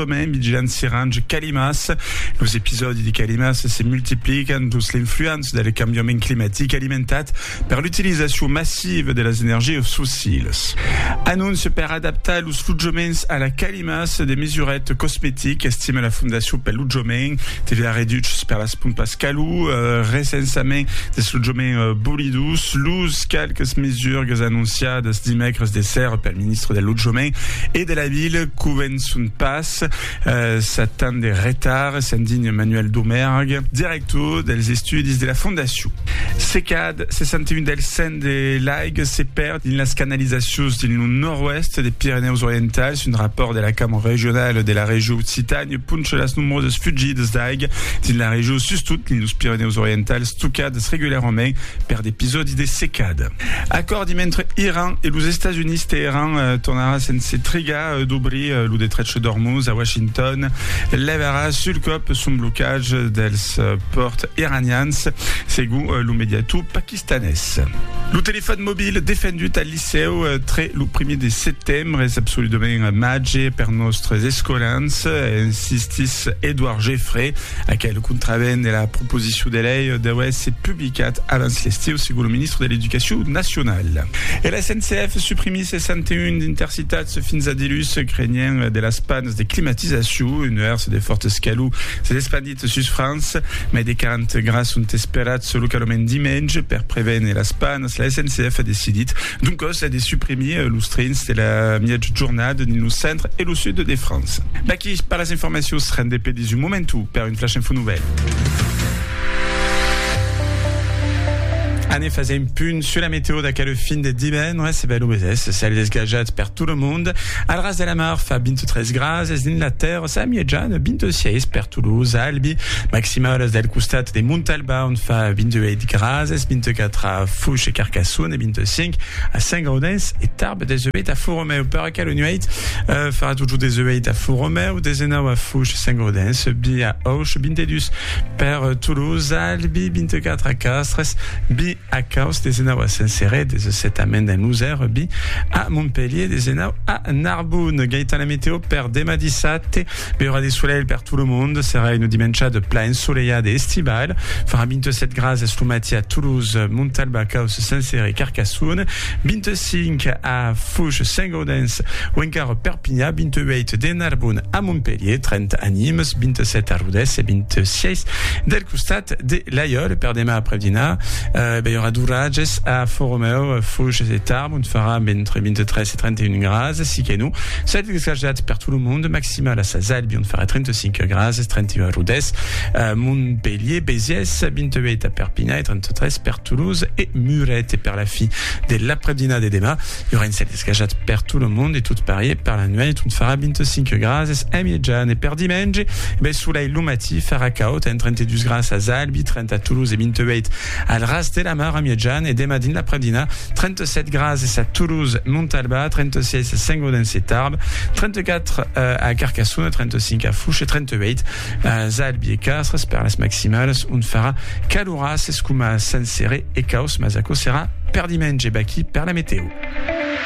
Còme Midgène Sirange Calimas, los episòdi de calimas se multiplican dins l'influença del cambiament climatic alimentat per l'utilizacion massiva de las energias fossilas. Anóncia per adaptar los lotjaments a la calimas, de mesuret cosmetic, estima la Fondacion pel Lotjament, TVA reduches per las pompas calor, recensament dels lotjaments bolidos, los qualques mesurgas anonciadas dimècres de sèrra pel ministre del Lotjament e de la Vila, Son pas sat tant de retard, se'n digna Manuel Domergue, director dels estudis de la fondacion. Se cad 61 del cent de l'aiga se perd dins las canalizacions dins lo nòrd-oèst de Pirenèus Orientals, un rapòrt de la Cambra Regionala de la Region Occitània poncha las nombrosas fugidas d'aiga dins la region, sustot dins los Pirenèus Orientals, tocadas regularament per d'episòdis de secada. Acòrdi mentre Iran e los Estats Units, Teheran tornarà sense trigar. dobrir lo detrech d'Ormuz a Washington levarà sul còp son blocatge dels pòrts iranians, segon lo mediator paquistanés. Lo telefòn mobil defendut al licèu tre lo primièr de setembre es absoludament màger per nòstres escolans, insistís Edouard Geffré. Aquel contravèn de la proposicion de lei deu èsser publicat abans l'estiu, segon lo ministre de l'Educacion nacionala. E la SNCF suprimís 61 d'intersection. Citats fins a dilhus, crenhent de las pannes de climatizacion, un nuèrs de fòrt escalor s'es espandit sus França. Mai de 40 grads son esperats localament dimenge. Per prevene las pannes, la SNCF a decidit d'un còs de suprimir los trens de la miègjornada dins lo centre e lo sud de França. D'aquí per las informacions rendepedis un momentu per Un flash info nouvèlh. Anne fasiá un punt sus la meteo d'aquel fin de divendres e bèl uesès, cèl desgajat per tot lo mond. Al ras de la mar fa 23 grads e dins la tèrra sa mièja de 26 per Toulouse, Albi. Maximals del costat de Montalba ont fa 28 grads, 24 a Fouche e Carcassonne e 25 a Saint-Gaudens e Tarbes. Desebèt a Font-Romèu. Aquela nuèit, farà totjorn des uèit a Font-Romèu, des enau a Fush, Saint-Gaudens, subbi a Auch, 22 per Toulouse, Albi, 24 a Castres, bi a Caus, des enau a Saint-Céré, 17 a Mende, Nusèr, bi a Montpelhier, des enau a Narbonne. Gaitan la meteo per demà dissabte, beurà de solelh per tot lo mond, serà una dimenchada plan ensolelhada e estival, farà 27 grases lo matí a Toulouse, Montalba, Caus, Saint-Céré, Carcassonne, 26. 5 a Fouge, Saint-Gaudens o encara Perpinha, 28 de Narbon a Montpelhier, 30 a Nimes, 27 a Rodés e 26 del costat de Laiòl. Per demà après dinar, eh, ben, i aurà d'oratges a Fòromèu, Fouges e Tarbes, ont farà entre 23 e 31 grases, si que non, ça va être esclajat per tot lo monde, maximal a Sas Albi, ont farà 35 grases, 31 a Rodés, eh, Montpelhier, Béziers, 28 a Perpinha e 33 per Toulouse e Muret. E per la fi, De l'après-dinar de demà, i aurà un cèl escajat per tot lo mond e tot parier per la nuèit ont farà 25 grases a mièjan e per dimenge, bèl solelh lo matí, farà caud amb 32 grases a Albi, 30 a Toulouse e 28 al ras de la mar a mièjan e demà dins l'après-dinar, 37 grases a Toulouse, Montalbà, 36 a Saint-Gaudens e Tarbes, 34 a Carcassona, 35 a Fouche e 38 As Albi e Castres, pèrles maximales, ont farà caloràs es coma Saint-Céré e caus, mas aquò serà per dimenge. Vaquí per la metèo.